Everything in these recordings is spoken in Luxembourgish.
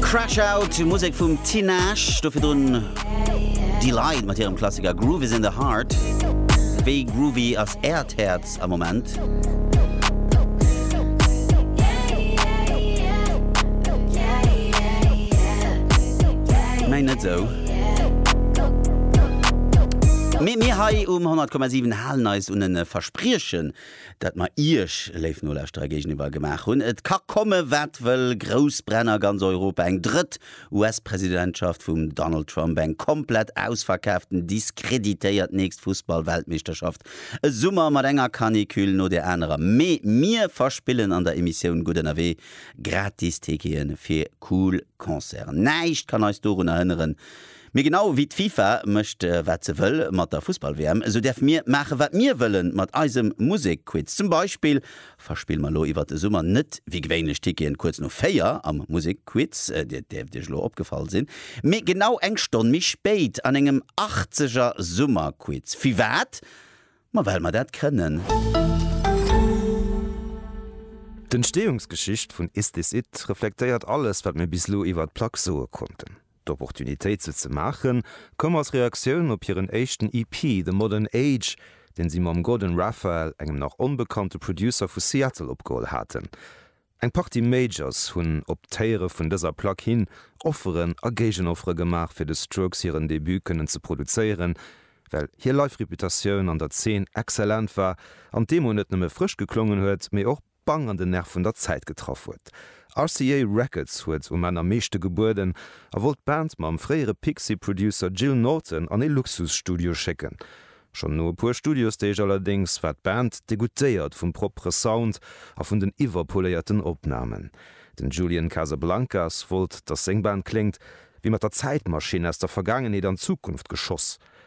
Crash Out, Musek vum Tinashe, do virdrun Deee-Lite mat hirem Klassiker Groove is in the Heart. Wéi groovy ass Äert Häerz am Moment? Mäin net esou. Mee mir hei um 100,7 halen eis un e Verspriechen. dat mer Iech, léif Nolauschterer, géigeniwwer gemaach hunn. Et ka komme wat wëll, grouss Bränn a ganz Europa, eng drëtt US-Presidentschaft vum Donald Trump, eng komplett ausverkaaften, diskreditéiert nächst Fussball-Weltmeeschterschaft, e Summer mat enger Canicule no der anerer, mee mir verspillen an der Emissioun Gutt Ënnerwee gratis Tickete fir cool Concerten. Näischt kann eis dorunner hënneren, Mee genau ewéi d'FIFA mécht wat se wëll mat der Fussball-WM, esou däerfe mir maache wat mir wëlle mat eisem Musek-Quiz. Zum Beispill verspille mer elo iwwert de Summer net wéi gewéinlech d'Ticketen kuerz no 4 am Musek-Quiz, dat däerft Iech elo opgefall sinn, mee genau eng Stonn méi spéit an engem Achtzeger Summer-Quiz. Firwat? Ma well mer dat kënnen! D'Entstehungsgeschicht vun Is This It? reflektéiert alles wat mir bis elo iwwert d'Plack soe konnten. D'Opportunitéit se ze maachen, koum als Reaktioun op hiren éischten EP The Modern Age, deen si mam Gordon Raphael, engem nach onbekannte Producer vu Seattle, opgeholl haten. Eng Partie Majors hunn op d'Héiere vun dëser Plack hin Offeren a Géigenoffere gemaach, fir de Strokes hiren Debut kënnen ze produzéieren, well hir Live-Reputatioun an der Zeen excellent war an d'Demo net nëmme frësch geklongen huet, mee och. pang an den Nerv vun der Zäit getraff huet. RCA Records huet um Enn am meeschte gebueden a wollt d'Band mam fréiere Pixies-Producer Gil Norton an ee Luxusstudio schécken. Schonn no e puer Studiosdeeg allerdéngs war d'Band degoûtéiert vum proppere Sound a vun den iwwerpoléierten Opnamen. Den Julian Casablancas wollt, datt seng Band kléngt wéi mat der Zäitmaschinn aus der Vergaangenheet an d'Zukunft geschoss.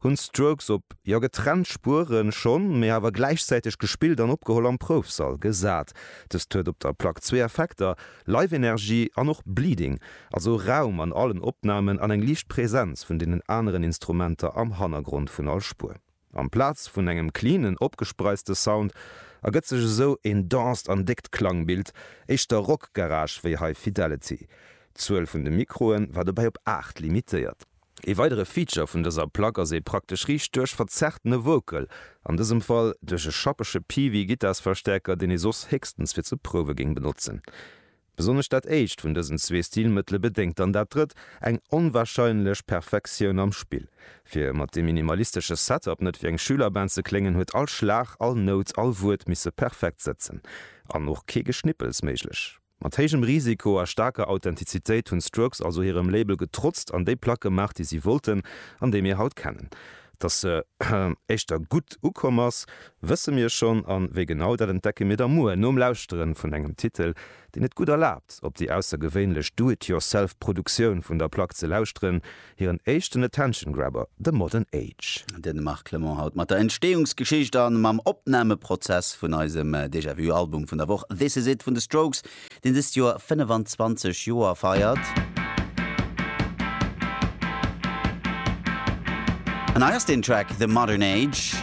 Hunn d'Strokes op, jo getrennt Spueren schonn, mee awer gläichzäiteg gespillt an opgeholl am Proufsall gesat. Dëst huet op der Plack zwee Effekter, Live-Energie an och Bleeding, also Raum an allen Opnamen an eng liicht Präsenz vun deenen aneren Instrumenter am Hannergrond vun all Spuer. Amplaz vun engem cleanen, opgespreiste Sound ergëtt sech esou een denst an déckt Klangbild, éischter Rock-Garage wéi High Fidelity. D'Zuel vun de Mikroe war dobäi op 8 limitéiert. Ee weidere Feature vun dëser Plack ass ee praktesch Riicht duerch verzerrtene Vocal, an dësem Fall duerch e schappege Peavey-Gittarsverstäerker, deen ee soss héchstens fir ze prouwe géing benotzen. Besonnesch dat éischt vun dësen zwee Stilmëttele bedéngt dann dat drëtt, eng onwarscheinlech Perfektioun am Spill. Fir mat deem minimalistesche Setup net wéi eng Schülerband ze kléngen, huet all Schlag, all Nout, all Wuert misse perfekt sëtzen, an och kee Geschnippels méiglech. Mat héijem Risiko a staarker Authentizitéit hunn d'Strokes also hirem Label getrotzt an déi Plack gemaach, déi si wollten an déi mir haut kennen. Dass se éischter gutt ukomm ass, wësse mir schonn an wéi genau, dat entdecke mir da muer nom Lauschtere vun engem Titel, deen et gutt erlaabt, op déi aussergewéinlech Do-it-yourself-Produktioun vun der Plack ze lauschteren, Hiren éischten Attention Grabber, The Modern Age. Den Marc Clement haut mat der Entsteeungsgeschicht a mam Opnameprozess vun eisem Déjà Vu Album vun der Woch This Is It vun The Strokes, deen dëst Joer 25 Joer feiert. An hei ass den Track The Modern Age.